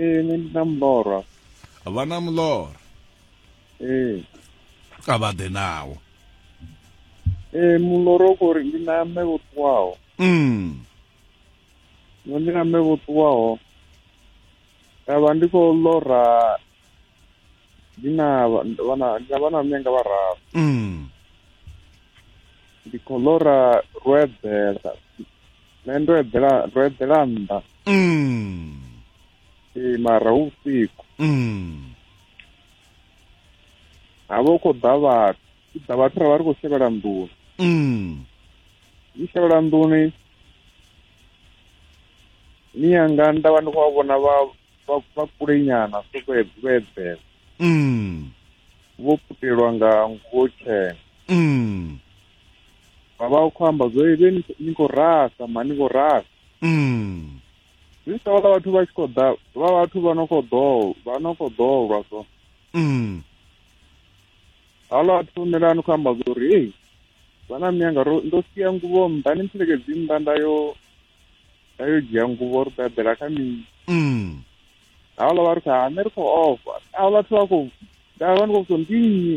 ee nṋe ndi na mulora vha na mulora ee a vha ḓe nawo ee mulora u khou ri ndi na mme vho ṱuwaho mm. ndi na mme vho ṱuwaho nda vha ndi khou lora ndi na vha na mme nga vhararu mm. ndi khou lora ro eḓela nṋe ndo eḓela ndo eḓela nnḓa mm. ee mara hu vhusiku mm. ha vha hu khou ḓa vhathu u ḓa vhathu ra vha ri khou shevhela nḓuni mm. ni shevhela nḓuni ni yanga nda vha ndi khou vha vhona vha vha kule nyana so vho eḓela mm. vho putelwa nga nguo tshena mm. vhavha u khou amba zwo vhe ni khou rasa ma ni khou rasa mm. zwi sa vhala vhathu vha tshi khou ḓa vha vhathu vha no khou ḓo vha no khou ḓolwa so mm. halo a thunela ni khou amba zwo uri ei vhana miyanga ro ndo sia nguvho nnḓa ni mpfelekedzi nnḓa nda yo nda yo dzhia nguvho ri ḓaḓela kha mini mm. halo vha ri kha nṋe ri khou ofha a vhathu vha khou nda vha ni khou so ndi nnyi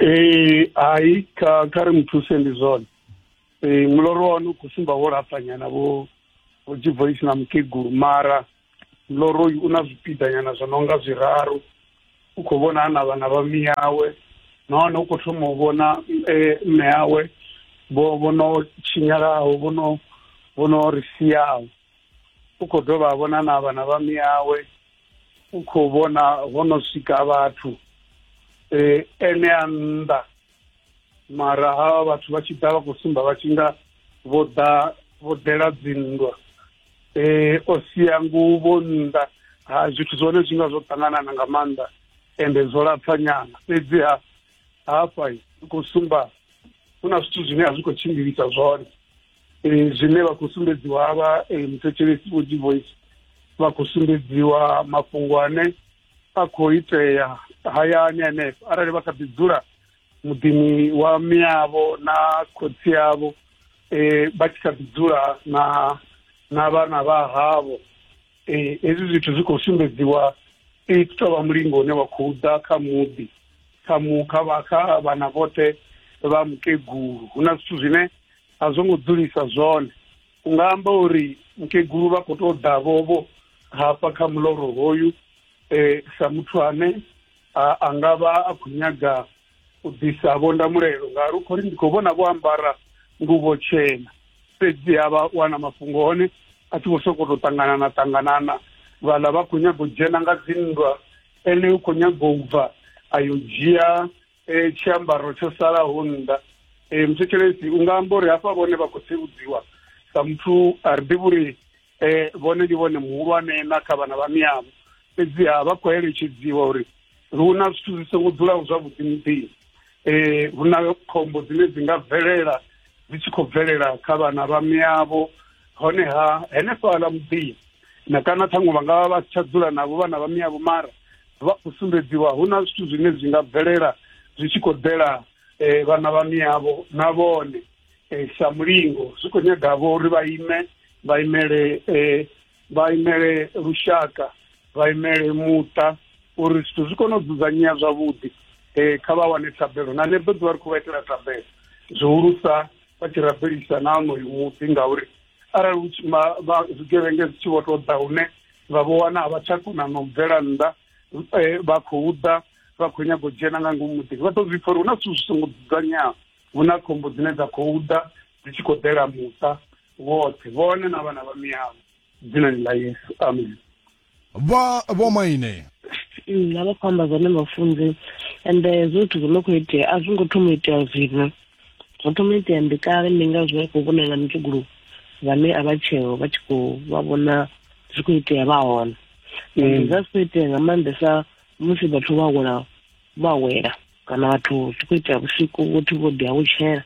ee hai kha kha ri muthuse ndi zwone ee muloro wa hone u khou sumba wo lapfanyana vho vho jivoisi na mukegulu mara muloro uyu u na zwipiḓanyana zwo no nga zwiraru u khou vhona a na vhana vha miyawe nahone u khou thoma u vhona eh, mme yawe vho vho no tshinyalaho vho no vho no ri siaho u khou dovha a vhona na vhana vha miyawe u khou vhona ho no swika vhathu um ene a nnḓa mara havha vhathu vha tshi ḓa vha khou sumba vha tshi nga vho ḓa vho ḓela dzinndwa um o sia nguvho nnḓa ha zwithu zwone zwi nga zwo ṱanganana nga maanḓa ende zwo lapfa nyana fhedzi ha hafha ri khou sumba hu na zwithu zwine a zwi khou tshimbilisa zwone e, zwine vha khou sumbedziwa havha e, muthetshelesi vho divoice vha khou sumbedziwa mafhungo ane a khou itea hayani henefho arali vha kha ḓi dzula muḓini wa miyavho na khotsi yavho um vha tshi kha ḓi dzula na na vhana vha havho um hezwi zwithu zwi khou sumbedziwa i tou vha mulingo une wa khou ḓa kha muḓi kha mu kha vha kha vhana vhoṱhe vha mukegulu hu na zwithu zwine a zwo ngo dzulisa zwone u nga amba uri mukegulu vha khou tou ḓa vhovho hafha kha muloro hoyu um sa muthu ane a nga vha a khou nyaga u ḓisa vhondamulelo ngauri u khou ri ndi khou vhona vho ambara nguvho tshena fhedzi ha vha wana mafhungo hone a tshi vho sokou tou ṱanganana ṱanganana vhaḽa vha khou nyaga u dzhena nga dzinndwa ene u khou nyaga u bva a yo dzhia e, tshiambaro tsho salaho nnḓa e, mthetshelesi u nga amba uri hafha vhone vha khou tsivhudziwa sa muthu a ri ḓivhi uri e, vhone ndi vhone muhulwane na kha vhana vha miyamu fhedziha vha khou eletshedziwa uri hu na zwithu zwi songo dzulaho zwavhuḓi muḓini um hu na khombo dzine dzi nga bvelela dzi tshi khou bvelela kha vhana vha miyavho honeha henefhaḽa muḓini na kana ṱhaṅwe vha nga vha vha si tsha dzula navho vhana vha miyavho mara vha khou sumbedziwa hu na zwithu zwine zwi nga bvelela zwi tshi khou ḓela um vhana vha miyavho na vhone um sa mulingo zwi khou nyaga vho uri vha ime vha imele um vha imele lushaka vha imele muṱa uri zwithu zwi kone u dzudzanyea zwavhuḓi um kha vha wane thabelo na ḽeḓo ḓuvha ri khou vha itela thabelo zwihulusa vha tshi rabelisa na onoyu muḓi ngauri arali hu tshi ma- vha- zwigevhenge zwi tshi vho tou ḓa hune vha vho wana a vha tsha kona na u bvela nnḓa eh, vha khou ḓa vha khou nyaga u dzhena nga ngomu muḓini vha ḓo zwi pfa uri hu na zwithu zwi songo dzudzanyeaho hu na khombo dzine dza khou ḓa dzi tshi khou ḓela muṱa woṱhe vhone na vhana vha miyavho dzinani ḽa yesu amen vha vho maine mm, vha vha khou amba zwone mafunze and eh, zwo zwithu zwo no khou itea a zwi ngo thoma itea zwino zwo thoma itea ndi kale ndi nga zwi khou vhonela mutshugulu vhane a vha tsheo vha tshi khou vha vhona zwi khou itea vha hone mm. zwa zwi khou itea nga maanḓesa musi vhathu vha wela vha wela kana vhathu ti khou ita vhusiku vhothu vho ḓi awutshela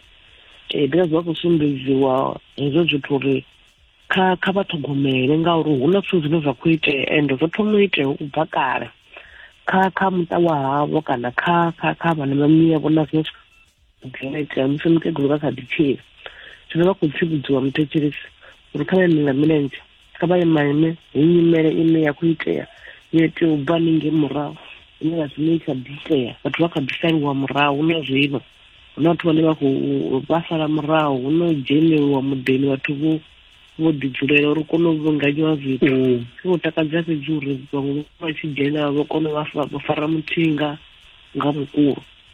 um because vha khou sumbedziwa hezwo zwithu uri kha kha vha ṱhogomele ngauri hu na zwithu zwine zwa khou itea ende zwo thoma u itea u bva kale kha kha muṱa wa havho kana kha kha kha vhana vha miyavho na zwine zwino itea musi mukegulu vha kha ḓi tshila zwino vha khou tsivhudziwa muthetshelesi uri kha vha eme nga milenzhe kha vha ye maine hu nyimele ine ya khou itea yo itea u bva ninge murahu ine vha zwine i kha ḓi itea vhathu vha kha ḓi saliwa murahu na zwino hu na vhathu vhane vha khou vha sala murahu hu no dzheneliwa muḓini vhathu vho vho ḓi dzulela uri kone u vhunganyiwa zwithu mm. zwi khou takadza fhedzi uri vhaṅwe vha tshi dzhena vha kone vha fara muthinga nga vhukulu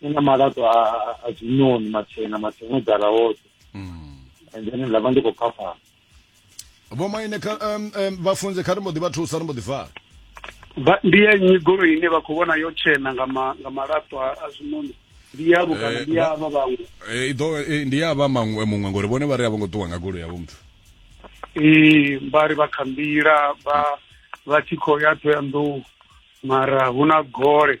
ni na malato a a zwinoni matshena matshena dzala woṱhe mm. and then nda vha ndi khou phafhana vho maine kha um, um, vhafunzi kha ri mbo ḓi vha thusa ri mbo ḓi fara ndi ya nnyi goloi ine vha khou vhona yo tshena nga ma, nga malato a, a zwinoni ndi yavho kana eh, ndi yavha vhaṅwe eh, iḓo eh, ndi yavha maṅwe muṅwe ngori vhone vha ri a vho ngo ṱuwa nga goloi yavho muthu ee vha ri vha kha nḓila vha vha tshi khou ya thoyandou mara hu na gole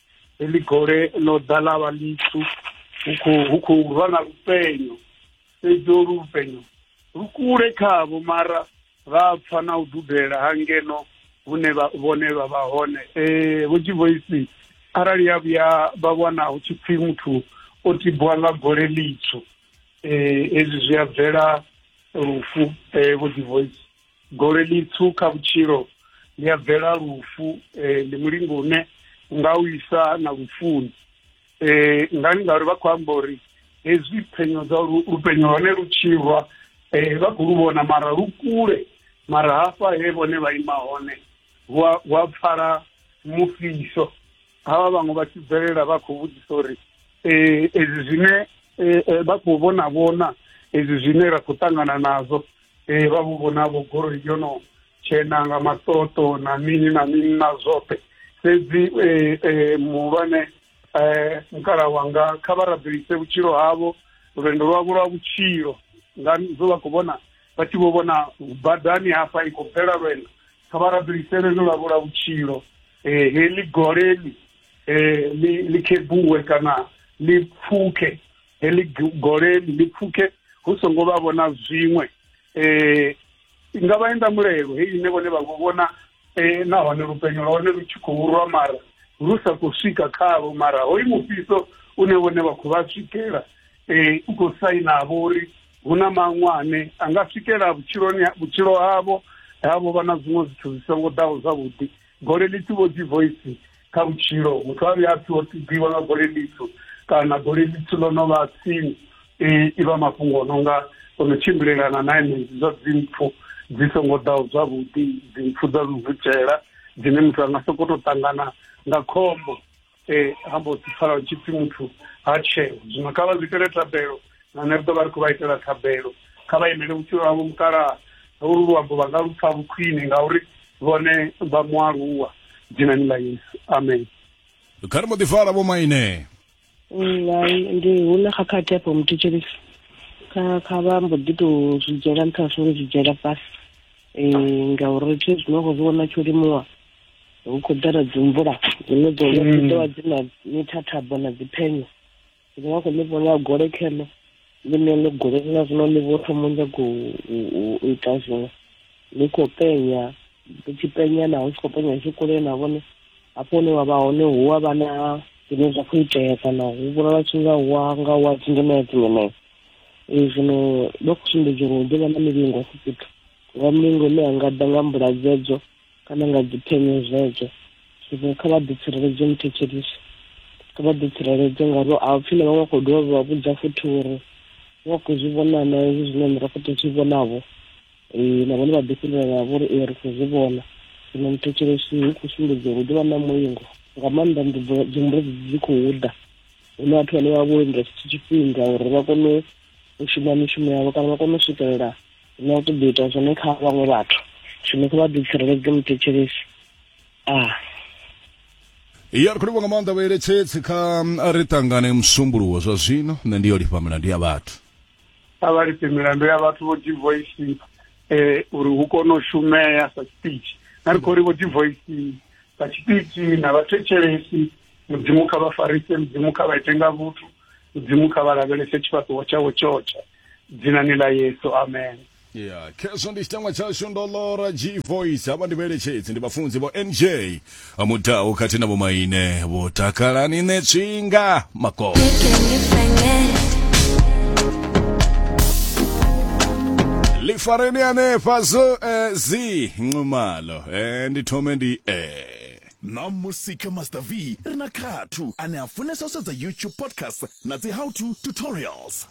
heḽi gole ḽo ḓa ḽa vha ḽitswu hu khou rwa na lupenyo fhedzi olu lupenyo lu kule khavho mara vha pfa na u dudela ha ngeno hune vhone vha vha hone um vho tshivoisi arali ya vhuya vha wana hu tshi pfhi muthu o tibwa nga gole ḽitswu um hezwi zwi a bvela lufu um vho tshivoisi goledi tswu kha vhutshilo ndi ya bvela lufu um ndi mulingo une nga u isa na lufuni um ngani ngauri vha khou amba uri hezwi phenyo dza lupenyo hone lu tshirwa um vha khou lu vhona mara lu kule mara hafha he vhone vha ima hone hu a pfala mufhiso havha vhaṅwe vha tshi bvelela vha khou vhudzisa uri um ezwi zwine vha khou vhona vhona ezwi zwine ra khou ṱangana nazwo ee vha vhu vhonavho goloi yo no tshena nga maṱoṱo na mini na mini na zwoṱhe fhedzi eh, eh, muhulwane eh, mukala wanga kha vha rabelise vhutshilo havho lwendo lwavho lwa vhutshilo nga zwo vha khou vhona vha tshi vho vhona badani hafha i khou bvela lwendo kha vha rabelise lwendo lwavho lwa vhutshilo eh, heḽi goleli eh, ḽi ḽi khebuwe kana ḽi pfuke heḽi goleli ḽi pfuke hu songo vha vhona zwiṅwe eh nga vha enda mulelo heyi ine vhone vha vhona eh nahone lupenyo lwa hone lu tshi khou rwa mara lu sa khou swika khavho mara hoyu mufhiso une vhone vha khou vha swikela eh u khou sainavho uri hu na maṅwe ane a nga swikela vhutshiloni vhutshilo havho havho vha na zwiṅwe zwithu zwi songo ḓaho zwavhuḓi goleli thi vho dzi voice kha vhutshilo muthu a vhuya a pfhi o tibiwa nga gole ḽitswu kana gole ḽitswu ḽo no vha tsini i vha mafhungo o no nga o no tshimbilelana na enedzi zwa dzimpfu dzi songo ḓaho zwavhuḓi dzimpfu dza luvutshela dzine muthu a nga sokou tou ṱangana nga khombo um ha mbo ḓi pfala hu tshi pfhi muthu ha tsheo zwino kha vha zwi itele thabelo vhane ri ḓo vha ri khou vha itela thabelo kha vha imele vhutshilo havho mukalaha holu luambo vha nga lu pfa vhukhwine ngauri vhone vha mualuwa dzhinani ḽa yesu amen kha ri mbo ḓi fara vho maine ndi hu na khakhathi afho muthetshelisi kha kha vha mbo ḓi tou zwi dzhiela nṱha zwo zwi dzhiela fhasi um ngauri thi zwino khou zwi vhona tsho limuwa hu khou ḓala dzimvula dzine dzo mm. dzi ḓo vha dzi na mithathabo na dziphenyo ndi nga khou ḽi vhona gole kheḽo ḽine ḽi gole na zwino ḽi vho thoma nyago u ita zwiṅwe ḽi khou penya ḽi tshi penya naho tshi khou penya tshi kule na vhone hafho hune wa vha hone hu a vha na zwine zwa khou itea kana hu vhonala tshi nga wa nga wa dzingemea dzingemea ee zwino vha khou sumbedza uri hu ḓo vha na milingo afho fhethu nga mulingo ine ya nga ḓa nga mbula dzedzo kana nga dziphenyo zwedzo zwino kha vha ḓitsireledze muthetshelisi kha vha ḓitsireledze ngauri a pfhi na vhaṅwe khou dovha vha vhudza futhi uri vha khou zwi vhona na hezwi zwine nṋe ra khou tou zwi vhonavho um na vhone vha ḓifhindulana vho uri ee ri khou zwi vhona zwino muthetshelesi hu khou sumbedza uri hu ḓo vha na mulingo nga maanḓa nḓudzo dzimbudzi dzi khou ḓa hu na vhathu vhane vha vho lindela tshithu tshifhinga uri vha kone u shuma mishumo yavho kana vha kone u swikelela na u ṱoḓa ita zwone kha vhaṅwe vhathu zwino kha vha ḓi tsireledze muthetshelesi a ah. ya ri khou livha nga maanḓa vhaeletshedzi kha a ri ṱangane musumbuluwo zwa zwino nṋe ndi yo lifha milandu ya vhathu a vha lifhe milandu ya vhathu vho divoisi um eh, uri hu kone u shumea sa tshipichi na ri khou ri vho divoisi sa tshipichi na vhathetshelesi mudzimu kha vha farise mudzimu kha vha ite nga vhuthu mudzimu kha vha lavhelese tshifhaṱuwo tshawo tshotshe dzinani ḽa yesu amen ya khezwo ndi tshitangwa tshashu ndo lora g voice havha ndi vheletshedzi ndi vhafunzi vho nj mudau khathihi na vhomaine vho takalani ne tswinga makolo lifareni hanefha zo eh, zi nxumalo eh, ndi thome ndi eh. na musika master v ri na khathu ane a funesa u sedza youtube podcast na dzi how to tutorials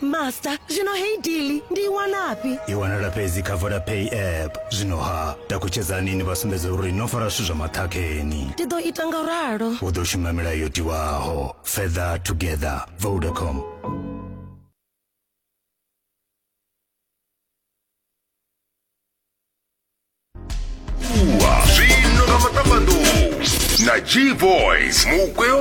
master zwino heyi dili ndi i wanafhi i wanala fhedzi kha vodapay app zwino ha takutshedzani ni vha sumbedze uri no fara zwithu zwa maṱhakheni ndi ḓo ita nga ralo u ḓo shuma milayo yo tiwaho further together vodacom Ua, zwino nga maṱambanḓou na g boys mugwe wa